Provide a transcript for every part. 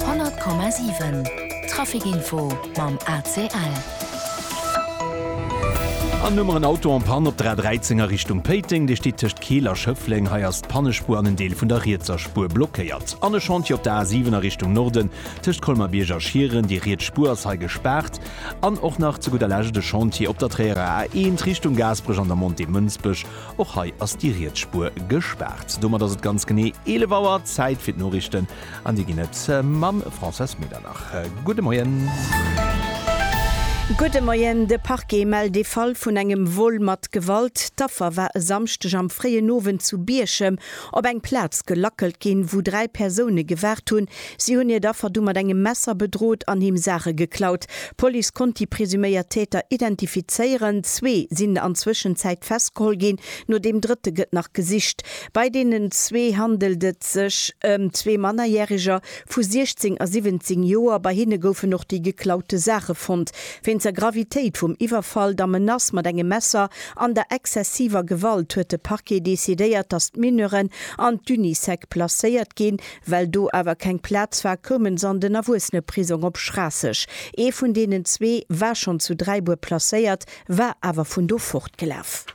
100,7 Trafic Info mam ACL. An hu mer en Auto en Panne op der A13 a Richtung Péiteng. Dee steet tëscht Keel a Schëffleng. Hei ass d'Pannespuer an en Deel vun der rietser Spuer blockéiert. An e Chantier op der A7 a Richtung Norden tëscht Colmer-Bierg a Schieren. Déi riets Spuer ass hei gespaart. An och nach zu gudder Lescht e Chantier op der Tréierer A1 Richtung Gaasperech an der Montée Mënsbech. Och hei ass déi riets Spuer gespaart. Domat ass et ganz genee 11 Auer, Zäit fir d'Noriichten an déi ginn et mam Françoise Medernach. Gudde Moien. Gudde Moien. De Parquet mellt ee Fall vun engem Vol mat Gewalt. D'Affer war e Samschdeg am fréien Owend zu Bierchem op eng Plaz gelackelt ginn, wou dräi Persoune gewaart hunn, Si hunn hiert Affer du mat engem Messer bedrot an him Saache geklaut. D'Police konnt déi presuméiert Täter identifizéieren. Zwee sinn an Zwëschenzäit festgeholl ginn. No deem drëtte gëtt nach gesicht. Bei deenen zwee handelt et sech ëm zwee Mannerjäreger vu 16 a 17 Joer. Bei hinne goufen och déi geklaute Saache fonnt. Wéinst der Gravitéit vum Iwwerfall, der Menace mat engem Messer an der exzessiver Gewalt huet de Parquet decidéiert, datt d'Mineuren an d'Unisec placéiert ginn. Well do awer keng Plaz war, koumen s'an den Erwuesseneprisong op Schraasseg. Ee vun deenen zwee war schonn zu Dräibuer placéiert, war awer vun do fortgelaf.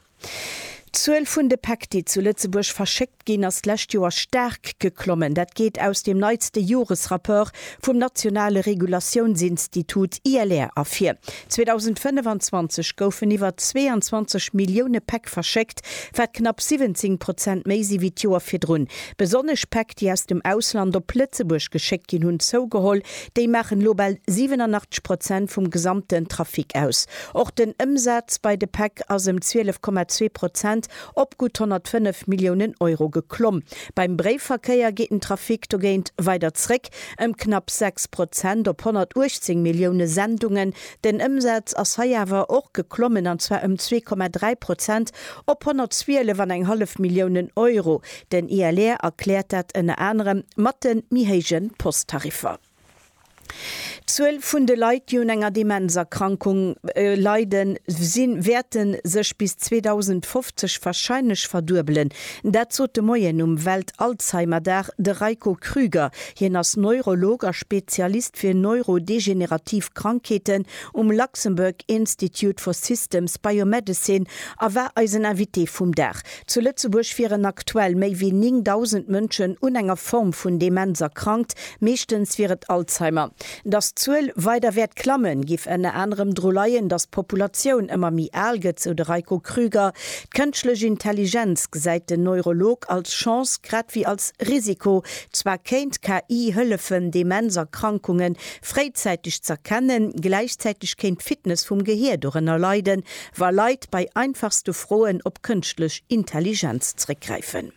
D'Zuel vun de Päck, déi zu Lëtzebuerg verschéckt ginn, ass d'lescht Joer staark geklommen. Dat geet aus dem neitste Joresrapport vum nationale Regulatiounsinstitut ILR ervir. 2025 goufen iwwer 22 Millioune Päck verschéckt, wat knapp 17 Prozent méi si wéi d'Joer virdrun. Besonnesch Päck, déi aus dem Ausland op Lëtzebuerg geschéckt ginn, hunn zougeholl. Déi maachen elo bal 87 Prozent vum gesamten Trafic aus. Och den Ëmsaz bei de Päck ass ëm 12,2 Prozent op gutt 105 Milliounen Euro geklomm. Beim Bréifverkéier geet den Trafic dogéint weider zréck, Ëm knapp 6 Prozent op 118 Millioune Sendungen. Den Ëmsaz ass hei awer och geklommen, an zwar ëm 2,3 Prozent op 112 an eng hallef Milliounen Euro. Den ILR erkläert dat ënner anerem mat de méi héije Posttariffer. D'Zuel vun de Leit, déi un enger Demenzerkrankung leiden, si wäerte sech bis 2050 warscheinlech verduebelen. Dat sot de Moien um Welt-Alzheimer-Dag de Reiko Krüger. Hien ass Neurolog a Spezialist fir neurodegenerativ Krankheeten um Luxembourg Institute for Systems Biomedicine a war eisen Invité vum Dag. Zu Lëtzebuerg wieren aktuell méi wéi 9.000 Mënschen un enger Form vun Demenz erkrankt, meeschtens wier et Alzheimer. Dass d'Zuel weider wäert klammen, giff ënner anerem dru leien, dass d'Populatioun ëmmer méi al gëtt, sou de Reiko Krüger. D'kënschtlech Intelligenz gesäit den Neurolog als Chance grad wéi als Risiko. Zwar kéint KI hëllefen, Demenzerkrankungen fréizäiteg z'erkennen, gläichzäiteg kéint d'Fitness vum Gehier dorënner leiden, wa Leit bei einfachste Froen op kënschtlech Intelligenz zréckgräifen.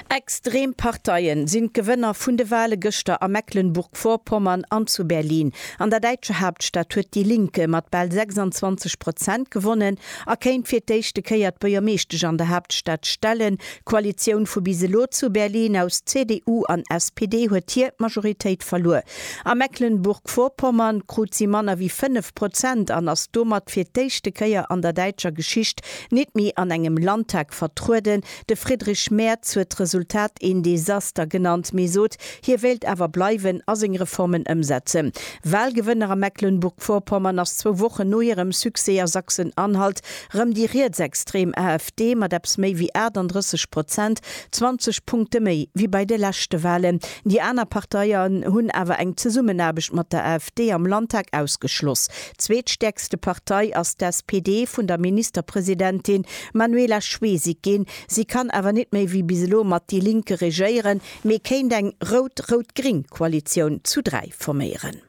Extrem Parteien sinn d'Gewënner vun de Wale gëschter a Mecklenburg-Vorpommern an zu Berlin. An der däitscher Haaptstad huet déi Linke mat bal 26 Prozent gewonnen a kéint fir d'éischte Kéier d'Buergermeeschtesch an der Haaptstad stellen. D'Koalitioun vu bis elo zu Berlin aus CDU an SPD huet hir Majoritéit verluer. A Mecklenburg-Vorpommern krut si manner wéi 5 Prozent an ass domat fir d'éischte Kéier an der däitscher Geschicht Nit méi an engem Landtag vertrueden. De Friedrich Merz huet d'Resultat een Desaster genannt, mee sot, hie wéilt awer bleiwen a seng Reformen ëmsetzen. Wahlgewënner a Mecklenburg-Vorpommern ass zwou Wochen no hirem Succès a Sachsen-Anhalt rëm déi rietsextrem AfD mat eppes méi wéi 38 Prozent, 20 Punkte méi wéi bei de leschte Wahlen. Déi aner Parteien hunn awer eng Zesummenaarbecht mat der AfD am Landtag ausgeschloss. Zweetstäerkste Partei ass d'SPD vun der Ministerpresidentin Manuela Schwesig ginn. Si kann awer net méi wéi bis elo mat déi Linke regéieren, mee kéint eng rout-rout-gring Koalitioun zu dräi forméieren.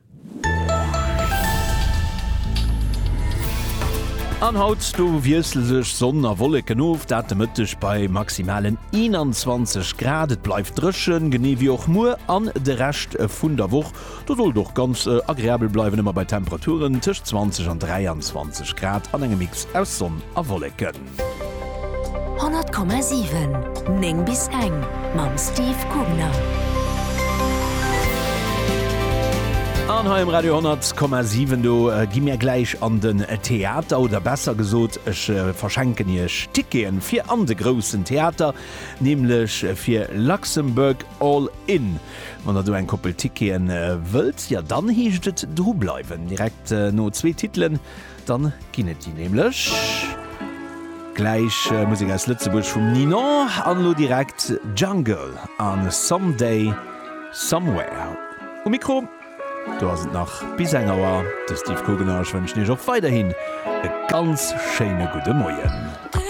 An haut, do wiessle sech Sonn a Wolleken of, dat de Mëtteg bei maximalen 21 Grad. Et bleift dréchen, genee wéi och muer an de Rescht vun der Woch. Do soll et och ganz agreabel bleiwen, ëmmer bei Temperaturen tëscht 20 an 23 Grad an engem Mix aus Sonn a Wolleken. 100,7, 9 bis eng mam Steve Kugner. An hei um Radio 100,7 do gi mir gläich an den Theater, oder besser gesot, ech verschenken iech Ticketen fir an de groussen Theater, nämlech fir Luxembourg All In. Wann der do eng Koppel Ticketen wëllt, ja dann heescht et dru bleiwen. Direkt no zwee Titelen dann ginn et déi nämlech. Gläich Musek aus Lëtzebuerg vum Ninon an elo direkt Jungle an Some Day Somewhere um Mikro. Do ass et nach bis eng Auer. De Steve Kugener, ech wënschen iech och weiderhin e ganz schéine gudde Moien.